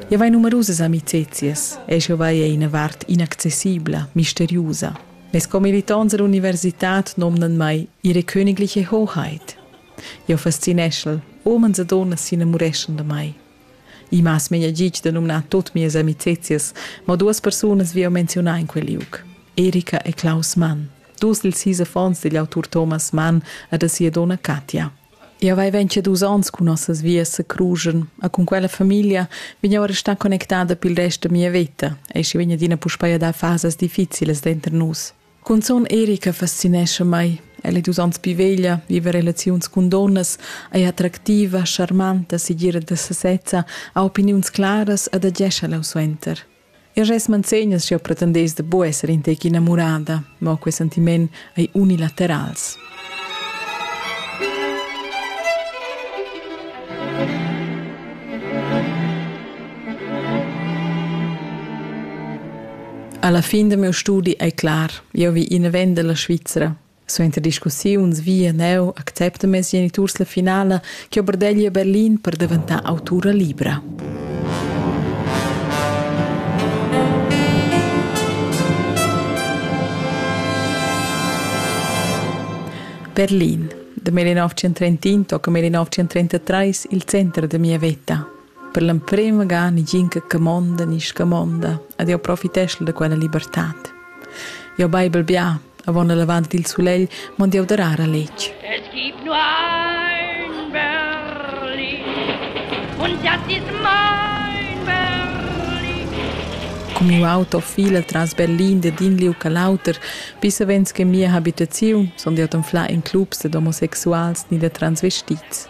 Jau hai numerusas amiczias e jau vai er ina vart inaccessibla, misteriusa. Mes commilitons all'universitad nomnan mai ihre königliche Hoheit. Jau fascineschel, omens e donnas s'inamureschan da mai. I m'has mia gig da numnar tut mias amicizias, ma duas persunas vi jau menzionar in quel liug. Erika e Klaus Mann, dus dils sis affons digl autur Thomas Mann e da sia donna Katja. Jau hai ventgadus onns cun nossas vias a Cruschen e cun quella famiglia vegn jau a restar connectada pil rest da mia veta, ei sche vegn adina puspei a dar fasas difficilas denter nus. Cunzun Erika fascinescha mei. Ella è dus onns pli veglia, viva relaziuns cun donnas, è attractiva, charmanta, segira da sesezza, ha opiniuns claras ed agescha leu suenter. Eu res manzegnas ch'eu pretendess da bu esser in tec inamurada, mo quei sentiment ei unilaterals. Alla fin del mio studi ei clar, io vi in vender la Svizzera. Suenter discussiuns vi e neu accepta mes geniturs la finala che Oberdegli a Berlin per daventar autura libra. Berlin. Da 1931 tocca 1933 il center da mia veta. Per l'emprema ga negin che camonda ni scamonda ed jeu profiteschel da quella libertad. Jeu beiber bia, avon el avant dil sulegl mond jeu darar a letg. Es gibt nur ein Berlin und das ist mein Berlin. Con miu auto fila tras Berlin da din liu ca l'auter, bis savens che mia habitaziun sun jeu anfla in clubs dad homosexuals ni da transvestits.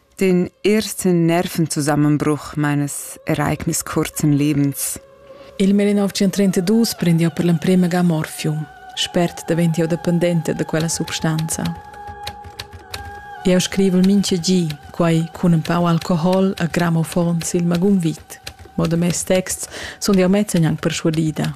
D'in ersten Nervenzusammenbruch meines Ereignis kurzem Lebens. Il 1932 prend jau per l'emprima ga morfium. Spert davent jau dependente da quella substanza. Eu scrivo minche gi, quai cun un pau alcohol a grammofon sil magun vit. Mo da mes texts sun jau mezza gnanc persuadida.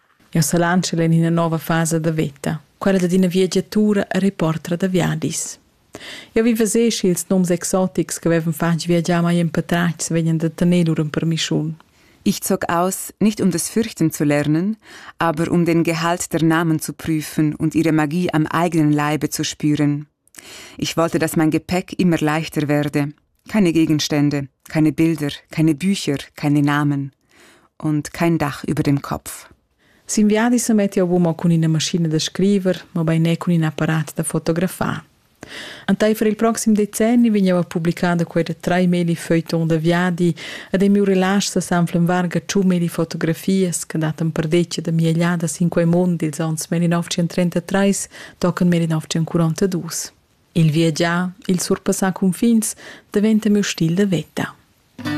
Jau s'alanschel en ina nova fasa da veta, quella dad ina viagiatura e reportra da viadis. Jau vi veser sch'ils nums exotics ch'avevan fatg viagiar mai en patratgs vegnan da tener lur empermischun. Ich zog aus, nicht um des Fürchten zu lernen, aber um den Gehalt der Namen zu prüfen und ihre Magie am eigenen Leibe zu spüren. Ich wollte, dass mein Gepäck immer leichter werde. Keine Gegenstände, keine Bilder, keine Bücher, keine Namen und kein Dach über dem Kopf. S'inviadi se metti uomo cun ina maschina da scriver, ma bei ne cun in apparat da fotografar. Entaifer il proxim decenni vegniva publicada quella tre meli feuilleton da viadi ed il miu relasch sa sanflen varga ciu meli fotografias che datan perdeccia da migliadas in quei mond ils anns 1933 tochen meri 1942. Il viagiar, il surpassar cunfins, daventa miu stil da veta.